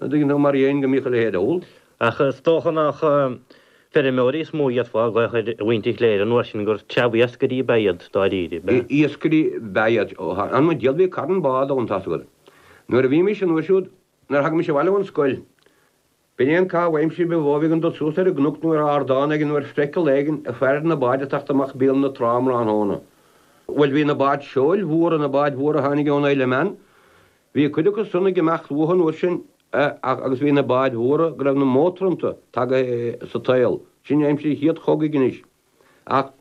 Ní dóigh liom mar aon go mbíodh a leithéid ann. Ach is dócha nach feirmeoirí is mó a fhéadfá a ghlaoch ar mhuintir Chléire an uair sin, gur treabh iascairí ab ea iad dáiríre. B'ea. Iascairí ab ea iad an uair úd, bhuel, bhí carn bád ann, tá's agat. Nuair a bhímis an uair siúd, nuair a thagaimis abhaile ón scoil, b'in é an caitheamh aimsire a bhíodh againn, dul suas ar an gcnoc nó ar ardán éigin nó ar phriacal éigin ag faire na báid ag teacht amach béal na trá um thráthnóna. Bhuel, bhí na báid seoil mhóra, na báid mhóra a tháinig ón Isle of Man, Bhí cuid acu san ag imeacht uathu an uair sin ach, agus bhí na báid mhóra go raibh na mótair iontu tagaithe sa tsaol, sin aimsir an chéad chogaidh anois. Ach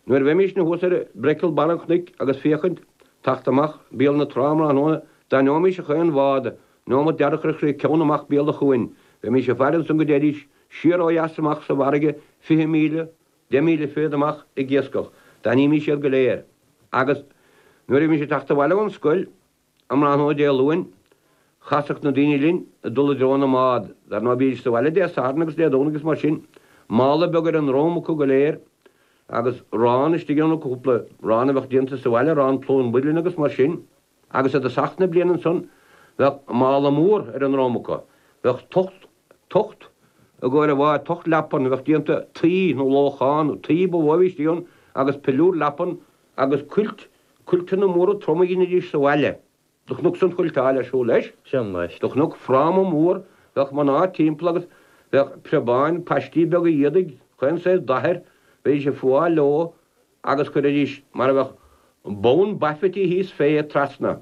nuair a bheimísne thuas ar breicl barr an chnoic agus féachaint, teacht amach béal na trá um thráthnóna, d'aithneoimís a chaon bhád, neomat do thabharfadh sí a ceann amach béal an chuain, bheimís ag faire ansan go dtéidís siar ó dheas amach sa bhfarraige fiche míle, deich míle fichead amach ag iascach. D'aithnímís iad go léir. Agus nuair a bhímís ag teacht abhaile ón scoil, Um thráthnóna Dé Luain, chasadh na daoine linn ag dul i dtreo na mbád. Dar ndóigh, bhídís sa bhaile Dé Sathairn agus Dé Domhnaigh is mar sin, mála beag ar a ndrom acu go léir agus 'rán istigh ann acu, cúpla 'rán a bheadh déanta sa bhaile, rán plúir, builín agus mar sin. Agus i dtosach na bliana ansan, bheadh mála mór ar a ndrom acu. Bheadh tocht. tocht i gcomhair a bharr, tocht leapan a bheadh déanta tuí nó lóchán tuí ba mhó a bhíodh ann agus piliúr leapan agus cuilt, cuilteanna móra troma a dheinidís sa bhaile do chonacsa an chuilteáil ar siúl leis, do chonac. Fráma mór, bheadh mná timpeall agus bheadh preabáin paistí beaga éadaigh chaon saghas dath air, bheidís ag fuáil leo agus chuiridís mar a bheadh bonn baifití thíos fé iad trasna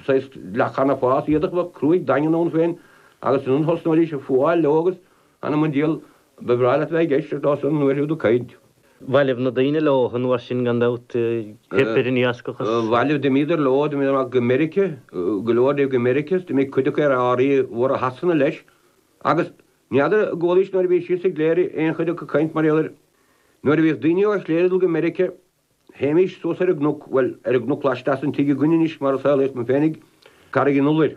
saghas leathchanabháis, éadach cruaidh daingean ann féin agus ansan thosnaídís ag fuáil leo agus ana mo dhíol ba bhreá leat a bheith ag éisteacht leo an uair úd ag caint. Bhailibh na daoine leo an uair sin gan dabht, theip ar an iascach is. Bhailibh d'imíodar leo, d'imíodar amach go Meirice, go leor díobh go Meirice is d'imigh cuid acu ar árthaí móra Shasana leis agus n'fheadar an gcualaís nuair a bhís thíos i gCléire aon chuid acu ag caint mar gheall air. Nuair a bhíodh daoine ó Chléire ag dul go Meirice Théimís suas ar an gcnoc, bhuel, ar an gcnoc laisteas den tigh againn anois mar a saolaíodh mé féinig, Carraig an Iolair.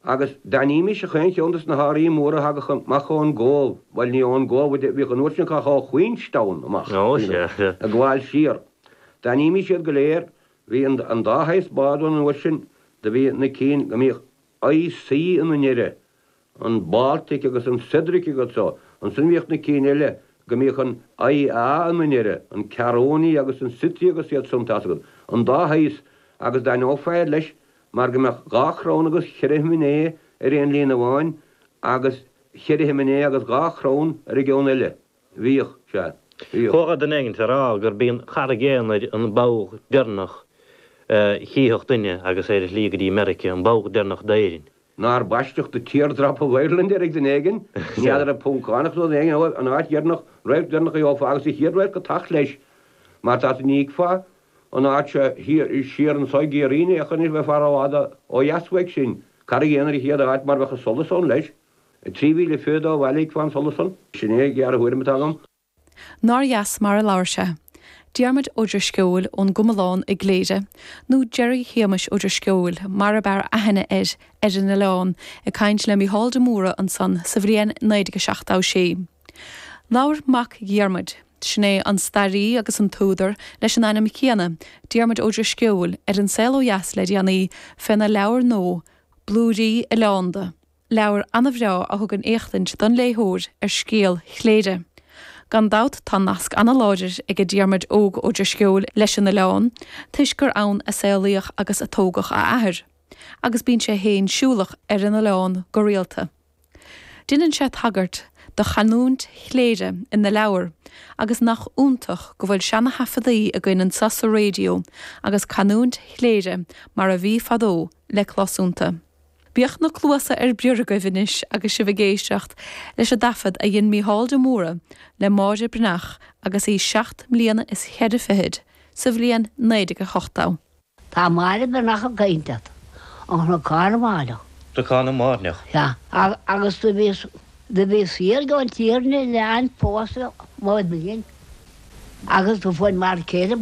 Agus d'aithnímís ach aon cheann de sna hárthaí móra a thagadh amach ón gCóbh, bhuel, ní ón gCóbh a bhíodh an uair sin ach ó Queenstown amach, you know, ag gabháil siar. D'aithnímís iad go léir, bhí an, an dá shaghas bád ann an uair sin, do bhí na cinn go mbíodh I.C. ina ndeireadh, an Baltic agus an Cedric agus iad san, ansin bhíodh na cinn eile go mbíodh an I.A. ina ndeireadh, an Caronia agus an Scythia agus iad san, tá's agat, an dá shaghas, agus d'aithneofá iad leis mar go mbeadh dhá chrann agus cheithre shiminé ar aon líne amháin agus cheithre shiminé agus dhá chrann ar an gceann eile. Bhíodh sé. Chuala duine éigin á rá gurb í an Charraig Aonair an ball deireanach a chífeadh duine agus é ar a shlí go dtí Meiriceá, an ball deireanach d'Éirinn. Nár baisteadh The Teardrop of Ireland air ag duine éigin? N'fheadar, an Poncánach nó duine éigin eile, an áit dheireanach, radharc deireanach a gheofá agus an chéad radharc ag teacht leis. Mar tá tú, ní fheicfeá an áit seo siar anseo i gCiarraí, ní fheicfeá anois, bheifeá rófhada ó dheas uaidh sin. Carraig Aonair an chéad áit mar bheadh an solas ann leis. Trí mhíle fichead ó bhaile chífeá an solas san. Sin é an ghearrthuairim atá agam. Nár dheas mar a labhair sé? Diarmuid Ó Drisceoil ón gComalán i gCléire, nó Gerry Shéamais Ó Drisceoil mar ab fhearr aithne air ar an oileán, ag caint le Mícheál de Mórdha ansan sa bhliain 1976. Labhair mac Dhiarmuid, sin é an staraí agus an t-údar leis an ainm céanna, Diarmuid Ó Drisceoil, ar An Saol Ó Dheas le déanaí, féna leabhar nua, Blúirí Oileánda. Leabhar an-bhreá a thugann éachtaint don léitheoir ar scéal Chléire. Gan dabht tá nasc an-láidir aige Diarmuid Óg Ó Drisceoil leis an oileán toisc gur ann a saolaíodh agus a tógadh a athair agus bíonn sé féin siúlach ar an oileán go rialta. Déanann sé tagairt do chanúint Chléire ina leabhar agus nach iontach go bhfuil seana-thaifeadaí againn anseo sa raidió agus canúint Chléire mar a bhí fadó le clos iontu. Bíodh na cluasa ar bior agaibh anois agus sibh ag éisteacht leis an dtaifead a dhein Mícheál de Mórdha le Máire Bhreathnach agus í seacht mbliana is cheithre fichid, sa bhliain 1980. Tá Máire Bhreathnach ag caint leat. Ó Chnocán na mBairneach. Cnocán na mBairneach. Sea. Agus do bhíos, do bhíos thiar Gleann Tiarna le Anne Foster, mo iníon, agus do fuair m'fhear céile,